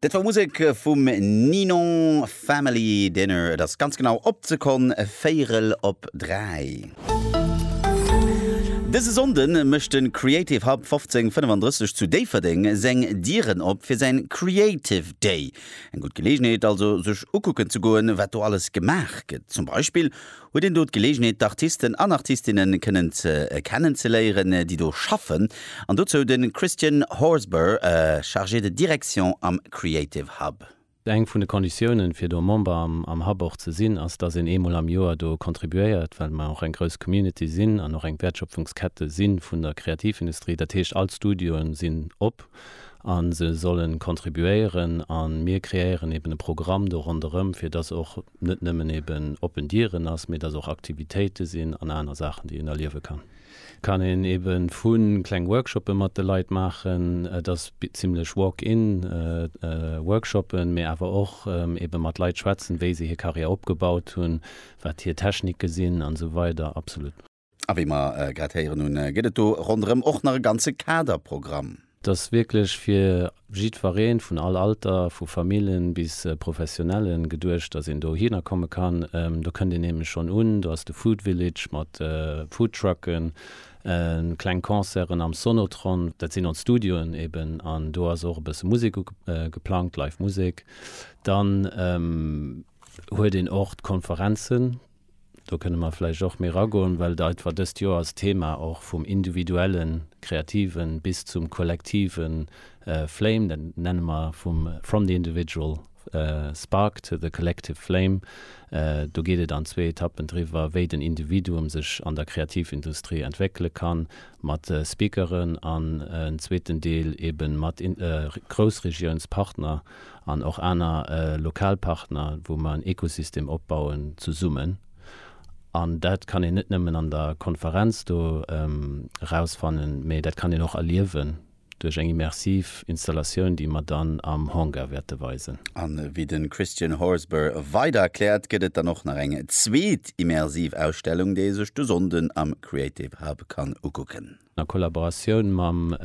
Dat war Musek vum Ninon, Family Dinner. Et ass ganz genau op d'Sekonn véierel op dräi. Dëse Sonnde mécht de Creative Hub 1535 zu Déifferdeng seng Dieren op fir säin Creative Day. Eng gutt Geleegenheet also sech ukucken ze goen wat do alles gemaach gëtt, zum Beispill Huet een do d'Gelegenheet d'Artisten an Artistinnen kënnen ze kennen ze léieren déi do schaffen an dozou de Christian Horsburgh, Chargé de Direction am Creative Hub. Eng vun de Konditiounen fir do Member am Hub och ze sinn ass dass een eemol am Joer do contribuéiert, well mer och eng grouss Community sinn an och eng Wäertschöpfungskette si vun der Kreativindustrie. Dat heescht all d'Studioen sinn op a se sollen contribuéieren a mir kreéieren eben e Programm do ronderëm fir dass och. net nëmmen eben oppen Dieren ass, mee dass och Aktivitéite sinn an aner Saachen, déi een erliewe kann. Kann een ebe vu kleng Workshoppe mat de Leit maachen, et ass zimlech Walk-in Workshoppen, mee awer och ebe mat Leit schwätzen, wéi se hir Karriär opgebaut hunn, wat hir Technike sinn an esou weider. Absolut. A wéi mer grad héieren hunn, gëtt et do ronderëm och nach e ganze Kaderprogramm. Et ass wierklech fir jiddwereen, vun all Alter, vu Famillen bis Professionellen geduecht, dass een dohinner komme kann. Do kënnt een nämlech schonn un, do ass de Food Village mat Foodtrucken, kleng Concerten am Sonotron, dat sinn ons Studioen eben, an do ass och e bësse Musek geplangt, Live Musek. Dann huet een och d'Konferenzen, do kënne mer vläicht och méi ragoen, well et einfach dëst Joer als Thema och vum individuellen Kreativen bis zum kollektive Flame, dat nenne mer vum From the individual spark to the collective flame, do geet et an zwee Etappen driwwer, wéi den Individuum sech an der Kreativindustrie entwéckele kann, mat Speakeren an en zweeten Deel eebe mat Groussregiounspartner. an och aner lokal Partner, wou mer en Ekosystem opbauen zesummen. An dat kann een net nëmmen an der Konferenz do erausfannen, mä dat kann een och erliewen duerch eng immersiv Installatioun, déi mer dann am Hangar wäerte weisen. A wéi de Christian Horsburgh weider erkläert, gëtt et dann och nach eng zweet immersiv Ausstellung, déi ee sech de Sonnden am Creative Hub kann ukucken. a Kollaboratioun mam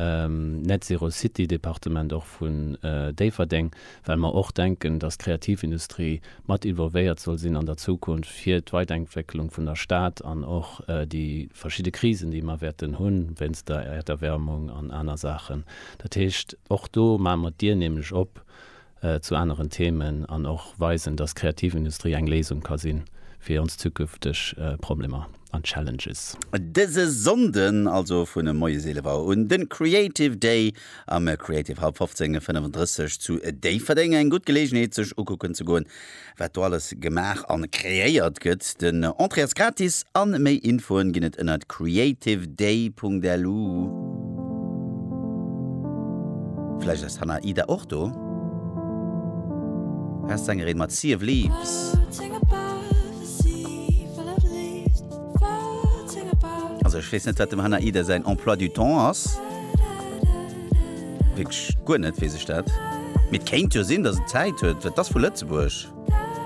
Net Zero City Departement och vun Déifferdeng, well mer och denken, dass d'Kreativindustrie mat involvéiert soll sinn an der Zukunft fir d'Weidenkwecklung vun der Stad an och déi verschidde Krisen, déi mer wäerten hunn, wéinst der Erderwärmung an aner Saachen. Dat heescht, och do maache mer d'Dier nämlech op zu aneren Themen an och weisen, dass d'Kreativindustrie eng Léisung ka sinn fir ons zukünfteg Problemer an Challenges. Dëse Sonnden, also vun e moies 11 Auer un, den Creative Day am Creative Hub 1535 zu Déifferdeng. Eng gutt Geleegenheet sech ukucken ze goen Wat do alles gemaach an kreéiert gëtt. Den Entrée ass gratis an méi Infoen ginn et ënnert creativeday.lu. Vläicht ass d'Hannah Ida och do? Best Sängerin mat Sea of Leaves. Also ech weess net wat dem Hannah Ida säin Emploi du temps ass. Wierklech guer net weess ech dat. Mee et kéint jo sinn, datt en Zäit huet. Wat ass vu Lëtzebuerg?